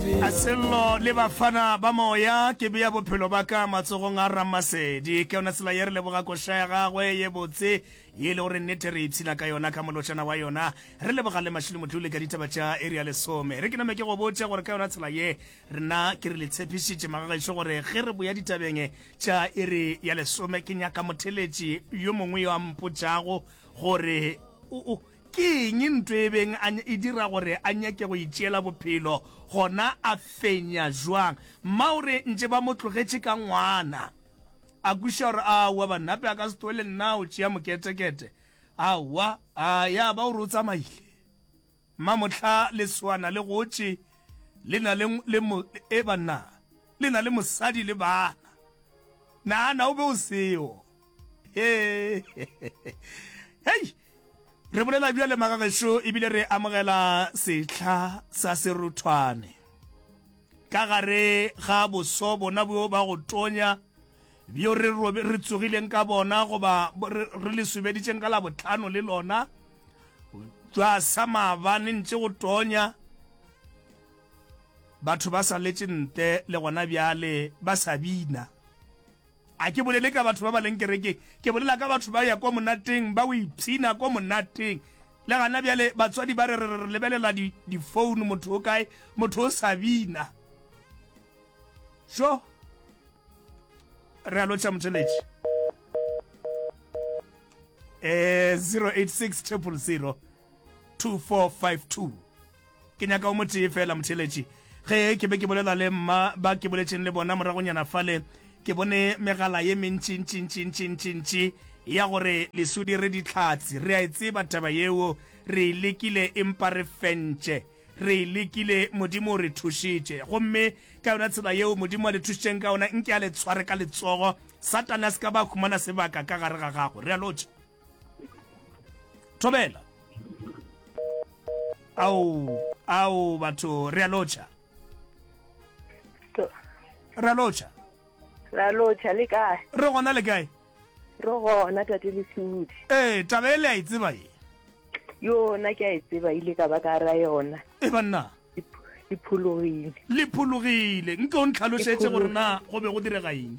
A Sello le Bafana ba Moya, ke bea bophelo ba ka matsogong a Ramasedi. Ke yona tsela ye re leboga koša ya gagwe ye botse, ye e lego gore nnete re ipshina ka yona ka molotšana wa yona. Re leboga le Mashilo Motlole ka ditaba tša iri ya lesome. Re ke name ke go botše gore ka yona tsela ye, rena ke re le tshepišitše magagešo gore ge re boya ditabeng tša iri ya lesome, ke nyaka motheletši yo mongwe yo a mpotšago gore, O, o, Ke eng ntwa e beng a e dira gore a nyake go itšeela bophelo, gona a fenya bjang? Mma o re ntše ba mo tlogetše ka ngwana, a kwešiša gore aowa Bannape a ka se tloge le nna a o tšea moketekete. Aowa, a ya ba o re o tsamaile. Mma mohla leswana le gotše le na le, le mo, e banna, le na le mosadi le bana. Nahana o be o seo. Hee, hei! Re bolela bjale magagešo ebile re amogela sehla sa seruthwane ka gare ga boso bona bjo ba go tonya bjo re robe re tsogileng ka bona goba re le subeditšeng ka la botlhano le lona jwa sa maabane ntše go tonya batho ba sa letše nte le gona bjale ba sa bina A ke bolele ka batho ba ba leng kerekeng, ke bolela ka batho ba ya ko monateng, ba o ipshina ko monateng. Le gana bjale batswadi ba re re re lebelela di difounu, motho o kae, motho o sa bina. Sho! Re a lotšha motheletši. Eh, 086 triple 0. 2452 ke nyaka o motee fela motheletši ge ke be ke bolela le mma ba ke boletšeng le bona moragonyana fale ke bone megala ye mentšintšintšintšintšintši ya gore lesudi re ditlhatsi re a e tseba taba yeo re e lekile empa re fentše re e lekile modimo o re thušitše gomme ka yona tsela yeo modimo a le thušitšeng ka yona nke a le tshware ka letsogo satane a se ka ba humana sebaka ka gare ga gago re a lotšha thobela ao ao batho re a lotšha re a lotšha re a lotšha le kae re gona le kae re gona tate lesudi ee taba e le a e tseba e yona ke a e tseba ile ka ba ka ra yona e banna le phologile le phologile nke o ntlhalošetse gore na go be go direga eng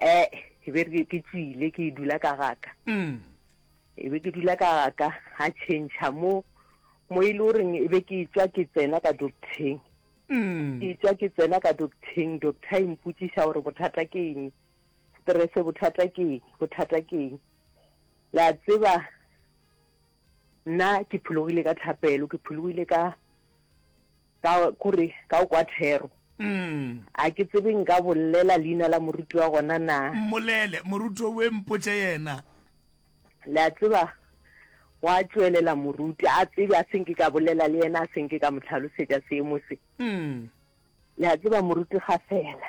eh e be re ke tswile ke dula ka gaka mm. e be ke dula ka gaka ga change mo mo e le goreng e be ke tswa ke tsena ka docteng mm. ke tswa ke tsena ka docteng doctor e mpotsiša gore bothata ke eng stress bothata ke eng bothata ke eng la tseba nna ke phologile ka tlhapelo ke phologile ka ka kore ka o kwa thero mm. a ke tsebe nka bolela leina la moruti wa gona na mmolele moruti o we mpotse yena le a tseba wa tswelela moruti a tsebe a seng ke ka bolela le yena a seng ke ka motlhalosetsa seemo se mm. le a tseba moruti ga fela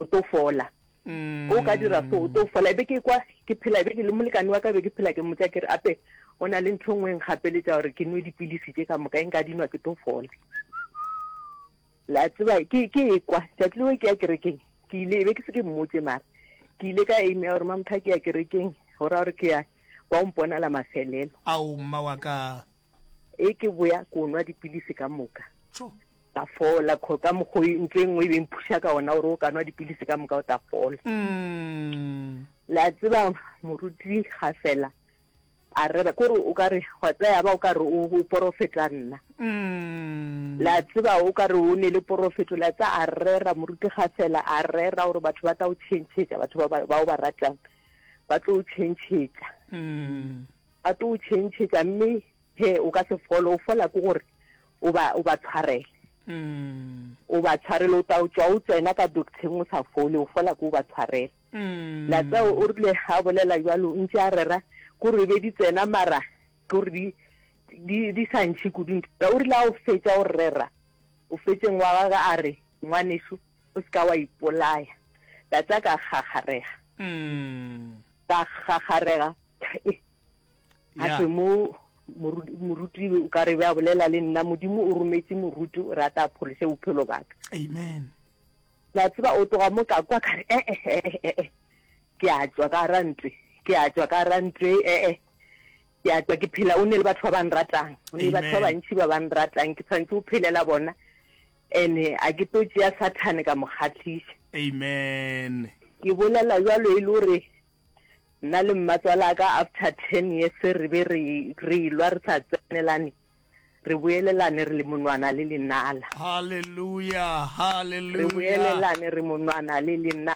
o tlo fola mm. o ka dira so o tlo fola ebe ke kwa ke phela ebe ke le molekane wa ka be ke phela ke motsa ke re ape o na le ntho e nngwe e nkgapeletsa gore ke nwe dipilisi tse ka moka e nka dinwa ke tlo fola la tseba ke e kwa tsatsi leo ke ya kerekeng ke ile ebe ke se ke mmotse mara ke ile ka aimea gore mamotho a ke ya kerekeng go raya gore ke ya ba o mponala mafelelo ao mma wa ka e ke boya ko nwa dipilisi ka moka ta fola kho ka mokgo e ntlo e nngwe e beng phuša ka ona gore o ka nwa dipilisi ka moka o ta fola mm. la tseba moruti ga fela a rera kore o ka re gwa tsaya ba o ka re o porofeta nna mm. la tseba o ka re o ne le porofeto la tsa a rera moruti ga fela a rera gore batho ba tla o changechetša batho ba o ba ratang ba tlo o changechetša mm. Ba tlo o tšhentšhetša, mme he o ka se fole. O fola ke gore o ba, o ba tshwarele. O ba tshwarele, o tla o tšwa o tsena ka docteng o sa fole, o fola ke o ba tshwarele. Latseo o rile ha bolela jalo o ntše a rera gore be di tsena mara ke gore di di di sa ntšhe kudu ntho. O rile ha o fetša o rera o fetšeng wa gage a re, Ngwanešu o se ka wa ipolaya. Tate a ka kgakgarega, ka kgakgarega a se mo moruti o ka re ba bolela le nna modimo o rometse moruti o rata pholise bophelo baka amen la tseba o tloga mo ka kwa ka re ee eh, eh, eh, ke a tswa ka ra ntwe ke a tswa ka ra ntwe ee ke a tswa ke phela o ne le batho ba bang ratang o ne le batho ba bantši ba bang ratang ke tshwanetse o phelela bona ene a ke tlo tšea sathane ka mo kgatlhisa amen ke bolela jalo e le gore Nna le mmatswala ka after ten years re be re re ilwa re sa tsenelane re boelelane re le monwana le lenala. Hallelujah, Re hallelujah. boelelane re monwana le lena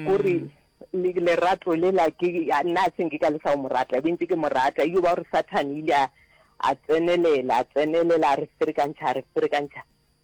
kore Mm. le- lerato lela ke a- nna a se nke ka le sa o mo rata be ntse ke mo rata eyo ba gore sathane ile a a tsenelela a tsenelela a re ferekantšha a re ferekantšha